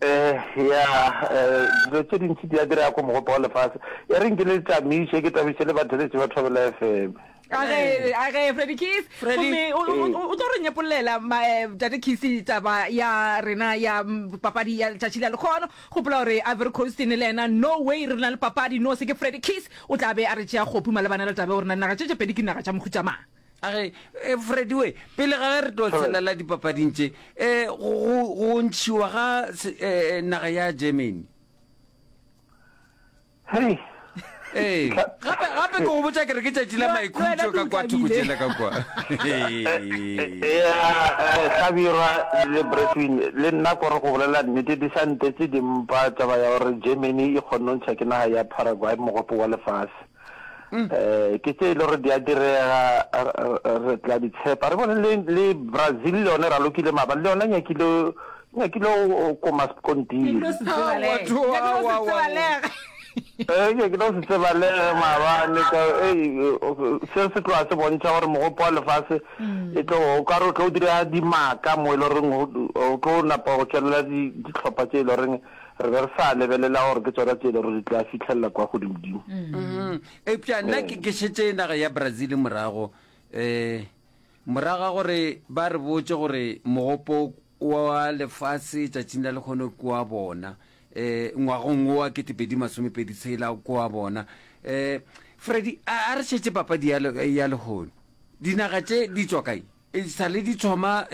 Eya, dilo tše dintši di a direga ko mogopo wa lefase. E reng ke le tamiše, ke tamiše le batheletši ba Thobela FM. A ge, a ge, Freddy Keys. Gomme o, o, o, o tlo re nyepolelela ma, Tate Keys taba ya rena ya papadi ya letšatši la lekgono. Gopola gore Ivory Coast e ne le yena, no way re na le papadi, no se ke Freddy Keys o tla be a re tšea kgopu malebana le taba ya gore na dinaga tše tše pedi ke dinaga tša mohuta mang. A re, E, Frediwe, pele ga ge re tlo tshelela dipapading tše, e, go, go, go ntšhiwa ga se, e, e, naga ya Germany. Hei, Ee, gape, gape ke go botša ke re ke tšatši la Yo, maikhutšo wena ka kwa thoko Dikabile. tšela ka kwa. ya eh, hlabirwa le bretwin le nna kore go bolela nnete di sa ntetse di mpa taba ya gore germany e kgonnontšha ke naga ya paraguay mogopo wa lefase Mm. eh ke tse e le gore di a direga re tla di tshepa re bone le brazil le yone ra lokile maabane le yone nyakile nyakile o koma sekontiri ke tlo se tsebalege maabane se se tloa se bontšha gore mogopo wa lefase mm. e tlo o kare o tlo o dira dimaka mo e le goreng o tlo napa go tswelela ditlhopha tse e le goreng re be re sa lebelela gore ke tsona tse e le gore di tla fitlhelela kwa godimodimo eupša nna ke ke šetse naga ya brazil morago um morago ga gore ba re botse gore mogopo wa lefase tšatšing la lekgono ke wa bona um ngwagong wo wa ketepedi masomepedi tshela ke wa bona um freddy a a re šetse papadi ya le- ya lehono dinaga tše di tswa kae E sa le di thoma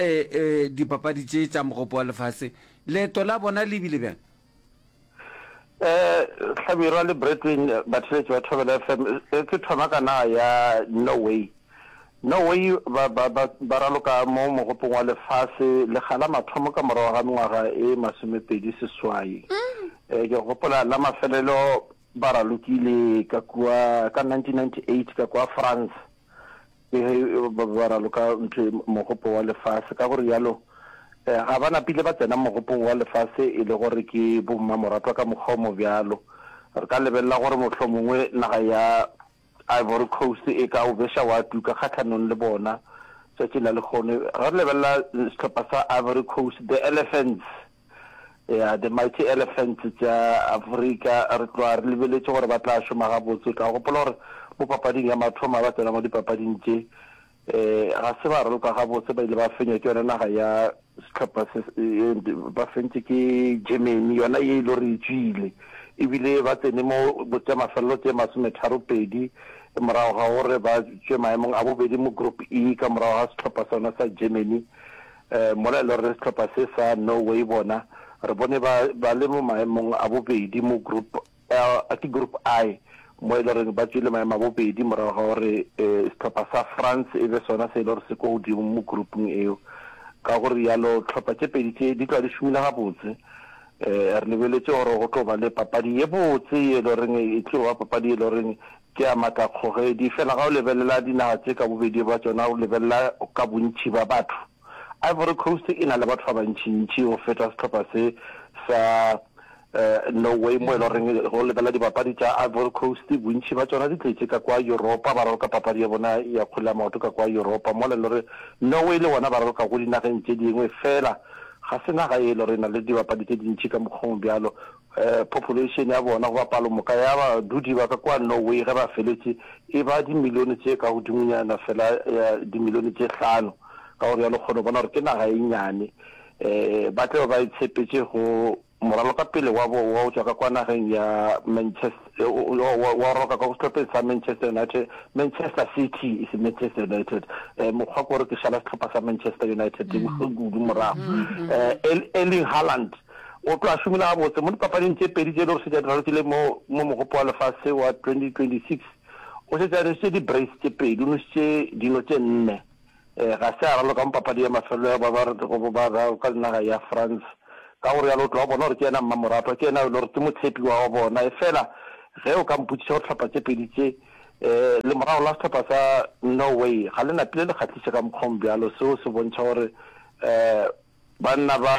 dipapadi tše tša Mogopo wa Lefase, leeto la bona le bile bjang? Hlabirwa le Bradwin, batheeletši ba Thobela FM, Ke thoma ka naga ya Norway. Norway ba raloka mo Mogopong wa Lefase lekga la mathomo ka morago ga mengwaga e masomepedi seswai. Ke gopola la mafelelo ba ralokile ka kua ka 1998 ka kua France. le ge e ba ba raloka ntho e, mogopo wa lefase. Ka go rialo, eh, ga ba napile ba tsena mogopong wa lefase e le gore ke bommamoratwa ka mokgwa o mo bjalo. Re ka lebelela gore mohlomongwe naga ya Ivory Coast e ka o beša wa tuka kgahlanong le bona tšatši la lekgono. Ge re lebelela sehlopha sa Ivory Coast, the Elephants, Ya, the mighty elephants tša Afrika, re tloga re lebeletše gore ba tla šoma gabotse. O tla gopola gore mo papading ya mathoma ba tsena mo dipapading tše, um ga se ba raloka gabotse, ba ile ba fenywa ke yona naga ya sehlopha se, ba fentše ke Germany, yona ye e lo re e tswile, ebile ba tsene mo go tša mafelelo tše masometharo pedi morago ga gore ba tšwe maemong a bobedi mo group E ka morago ga sehlopha sona sa Germany. Mola e le gore sehlopha se sa Norway bona re bone ba ba le mo maemong a bobedi mo Group L, a ke Group I, mo e le goreng ba tšwile maemo a bobedi morago ga gore sehlopha sa France e be sona se e le gore se kwa godimo mo groupung eo. Ka go rialo hlopha tše pedi tše di tla di šomile gabotse. Re lebeletše gore go tlo ba le papadi ye botse ye e le goreng e tlo ba papadi ye e le goreng Ke a matla kgogedi, fela ga o lebelela dinaga tše ka bobedi bja tšona, o lebelela ka bontši bja batho, Ivory Coast e na le batho ba bantšintši go feta sehlopha se sa Norway, mo e le goreng ge o lebelela dibapadi tša Ivory Coast, bontši bja tšona di tletše ka kwa Yuropa, ba raloka papadi ya bona ya kgwele ya maoto ka kwa Yuropa, mola e le gore Norway le bona ba raloka go dinageng tše dingwe, fela ga se naga ye e le gore e na le dibapadi tše dintši ka mokgweng bjalo. Population ya bona goba palomoka ya badudi ba ka kwa Norway ge ba feletše e ba dimilione tše ka godimonyana fela ya dimilione tše hlano, ka go realo kgone go bona gore ke naga e nnyane. Ba tla be ba itshepetše go moralo ka pele wa bo wa go tšwa ka kwa nageng ya Manchester, wa roka ka go sehlopheng sa Manchester United, Manchester City e se Manchester United, mokgwa ke gore ke šala sehlopha sa Manchester United kudu morago, Erling Haaland. O tlo a šomola gabotse mo dipapading tše pedi tše e lego šetše a di ralokile mo mo Mogopo wa Lefase wa 2026. O šetše a nwešitše di-brace tše pedi, o nwešitše dino tše nne. Ee, ga se a raloka mo papadi ya mafelelo ya babaredi go bobararo ka naga ya France. Ka go realo o tlo a bona gore ke yena mmamoratwa, ke yena yo e lego gore ke motshepiwa wa bona. Efela ge o ka mpotšiša gore dihlopha tše pedi tše, ee, lemorago la sehlopha sa Norway ga le napile le kgahliše ka mokgwa o mobjalo, seo se bontšha gore, ee, Banna ba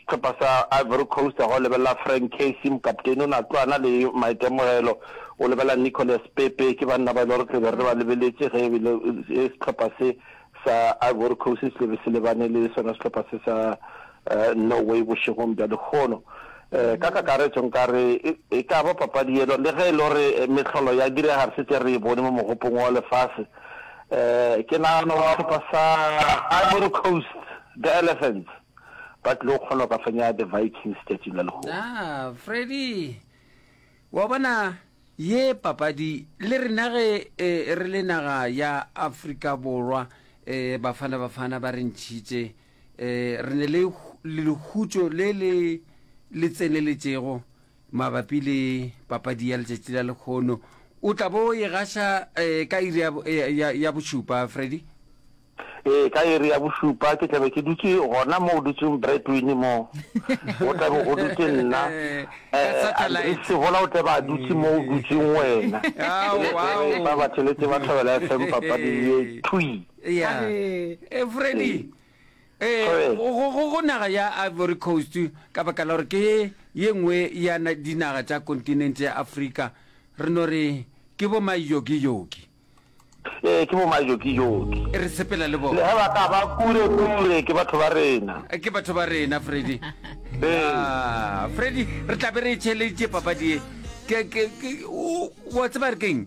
sehlopha sa Ivory Coast ga o lebelela Frank Casey, mokapteini, o ne a tlo a na le maitemogelo. O lebelela Nicolas Pepe, ke banna ba e le gore tle be re ba lebeletše ge ebile sehlopha se sa Ivory Coast se tle be se lebane le sona sehlopha se sa Norway bošegong bja lehono. Ka kakaretšo nka re e ka ba papadi yela le ge e le gore mehlolo ya direga re šetše re e bone mo mogopong wa lefase. Eh, ke nagana gore sehlopha sa Ivory Coast, the Elephants, ba tlile go kgona go ka fenya the Vikings tšatšing la legogo. na freddy wa bona ye papadi le rena ge eh, re le naga ya afrika borwa um bafana bafana ba re ntšhitše um re ne le hu- le lehutšo le le le tseneletšego Mabapi le papadi ya letšatši la lekgono, o tla bo e gaša ka iri ya bošupa, Freddy? Ee, ka iri ya bošupa ke tlabe ke dutše gona mo o dutšeng Breadwin mo. Go tlabe go dutše nna, Andre Sehola o tlabe a dutše mo o dutšeng wena. Ba ba tšhelete ba thobela FM papadi ye thwi. Freddy, Ee, go, go, go naga ya Ivory Coast, ka baka la gore ke ye nngwe ya na, dinaga tša kontinente ya Afrika, re no re ke bo maiyokiyoki. Ee, ke bo maiyokiyoki. Re sepela le bona. Le ge ba ka ba kure-kure, ke batho ba rena. Ke batho ba rena, Freddy. Ee. Ah, Freddy, re tla be re e theeleditše papadi ye. Ke, ke, ke, o, wa tseba re keng?